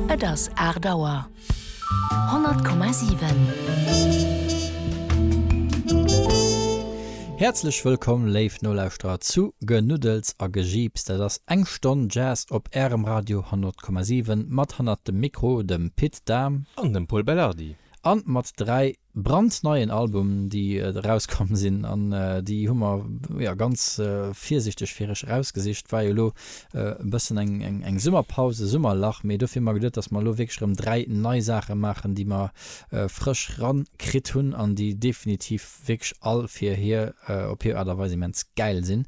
Et ass aacht Auer. 100,7. Häerzlech wëllkomm, léif Nolauschterer, zu Genuddels a Gejiips. Dat ass eng Stonn Jazz op Ärem Radio 100,7 mat hannert dem Mikro dem Pit Dahm. An dem Pol Belardi. An mat dräi brandneien Album déi erauskomm sinn an déi hu mer jo ganz virsichteg fir iech erausgesicht. War jo lo e bëssen eng Summerpaus, e Summerlach, mee dofir hu mer geduet, dass mer elo wierklech erëm dräi nei Saache maachen, déi mer frësch rankritt hunn an déi definitiv wierklech all fir hir op hir Aart a Weis immens gäil sinn.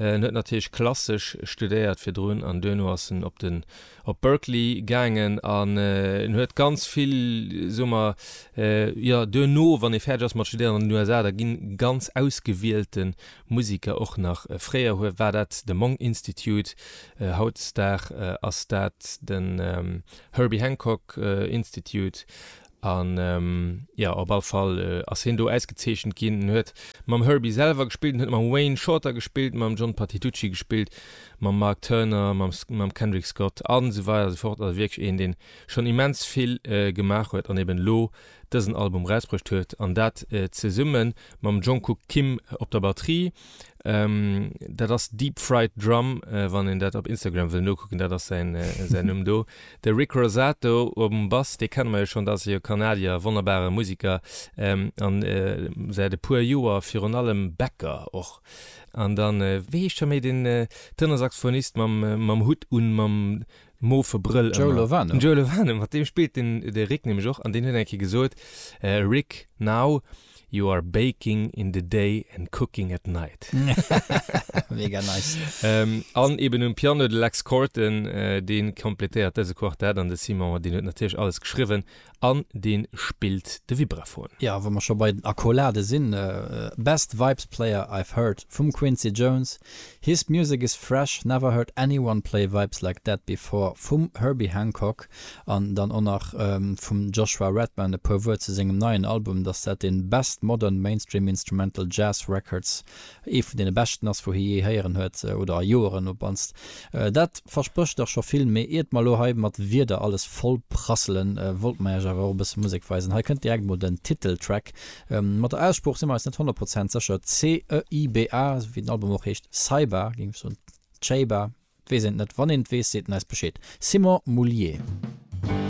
En huet natierlech klassesch studéiert virdrun an duerno ass en op den op Berkeley gaangen an en huet ganz vill, soe mer, jo duerno, wann ee fäerdeg ass mat studéieren an den USA, da ginn ganz ausgewielte Musiker och nach, fréier hue war dat de Monk Institute, hautdesdag ass dat den Herbie Hancock Institute, An jo, op all Fall ass hien do ausgezeechent ginn. En huet mam Herbie selwer gespillt, en huet mam Wayne Shorter gespillt, mam John Patitucci gespillt, mam Mark Turner, mam mam Kendrick Scott a sou weider a sou fort. Also wierklech een, dee schonn immens vill gemaach huet an eben elo dësen Album erausbruecht huet. An dat zesumme mam Jungkook Kim op der Batterie. dat ass Deep Fried Drum, äh, wann een dat op Instagram wëll nokucken, dat ass säin, äh, säin Numm do. De Rick Rosato um Bass, dee kenne mer jo schonn, dat ass e Kanadier, wonnerbare Musiker, ähm, an äh, säit e puer Joer virun allem Bäcker och. An dann, äh, wéi heescht hei méi, den äh, Tenor-Saxophonist mam, mam Hutt un, mam, moofe Brëll Joe ëmmer. Lovano. Den Joe Lovano, mat deem spillt den de Rick nämlech och an deen huet eng Kéier gesot, Rick, now you are baking in the day and cooking at night. Mega nice. An eben um Piano de Lex Corton, dee kompletéiert dëse Quartett an de Simon, deen huet natierlech alles geschriwwen an deen spillt de Vibraphon. Jo, wa mer scho bei den Accolade sinn, Best Vibes Player I've Heard vum Quincy Jones, His Music Is Fresh, Never Heard Anyone Play Vibes Like That Before vum Herbie Hancock an dann och nach vum Joshua Redman e puer Wuert zu sengem neien Album, dass dat dee Best Modern Mainstream Instrumental Jazz Records Ee vun deene beschten ass, wou hie jee héieren huet, oder a Joeren op mannst. Dat versprécht dach scho vill. Mee iert mer elo hei mat Wierder alles vollprasselen, wollte mer iech awer och e bësse Musek weisen. Hei kënnt direkt mol den Titeltrack. Mat der Aussprooch si mer eis net honnert Prozent sécher, CEYBA, esou wéi den Album och heescht, Ceyba géing ech soen, Ceyba, et weess een et net. Wann een et weess, seet en eis Bescheed. Simon Moullier.